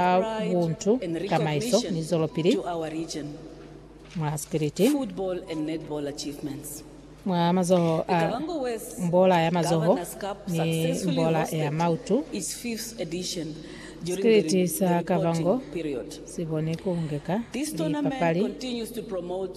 a buntu, tamaiso, ni zwelopili mwa spiliti. Mwa mazoho a mbola ya mazoho ni mbola ya mautu, Spiliti sa Kavango si boni ku ngeka lipapali.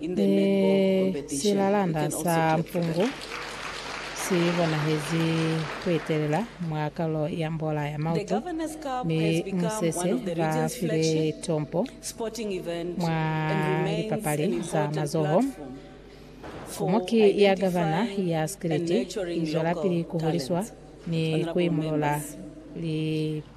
Mi silalanda sa mpungu si bonahezi kuetelela mwa kalulo ya mbola ya mautu, mi musese ba file tompo mwa lipapali za mazoho. Komoki ya Gavana ya Sikiliti izwelapili kuhuliswa ni kuimulula lipaki.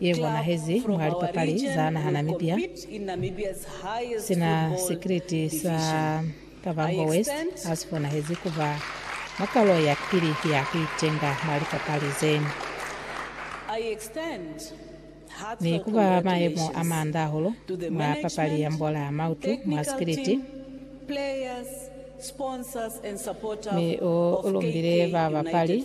Ye bonahezi mwa lipapali za Naha Namibia, sina sikiliti sa Kavango West asifonahezi kuba mwa kalo ya pili ya kuitenga mwa lipapali ze, ni kuba mayemo a manda ahulu mwa papali ya mbola mautu mwa sikiliti, mi u lumbile babapali.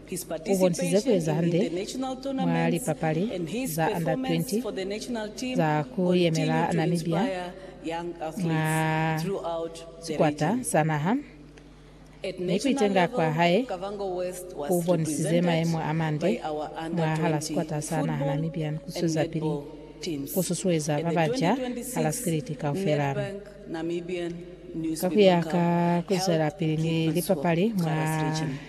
U bonisize ku eza hande mwa lipapali za Under 20 za ku yemela Namibia mwa sikwata sa naha, mi ku itenga kwa hae ku bonisize mayemo a mande mwahala sikwata sa naha Namibia ni ku zwezapili ku susueza ba baca hala sikiliti kaufela. Ka ku ya ka ku zwelapili ni lipapali mwa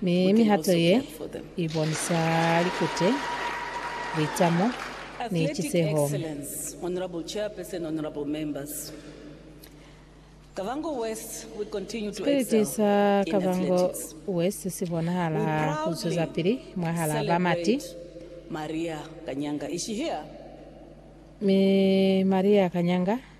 Mi mihato ye i bonisa likute, litamo, ni ciseho. Sipiliti sa Kavango West si bonahala ha ku zwezapili mwahal'a ba mati. Mi Maria Kanyanga.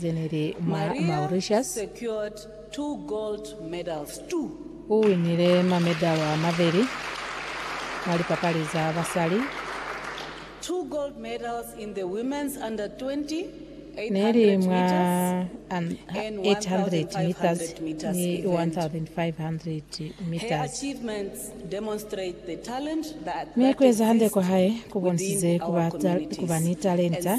ze ne li mwa Mauritius. U winile mamedalo a mabeli mwa lipapali za basali. Ne li mwa 800 meters ni 1,500 meters. Mi ku eza hande kwa hae ku bonisize ku ba ni talenta.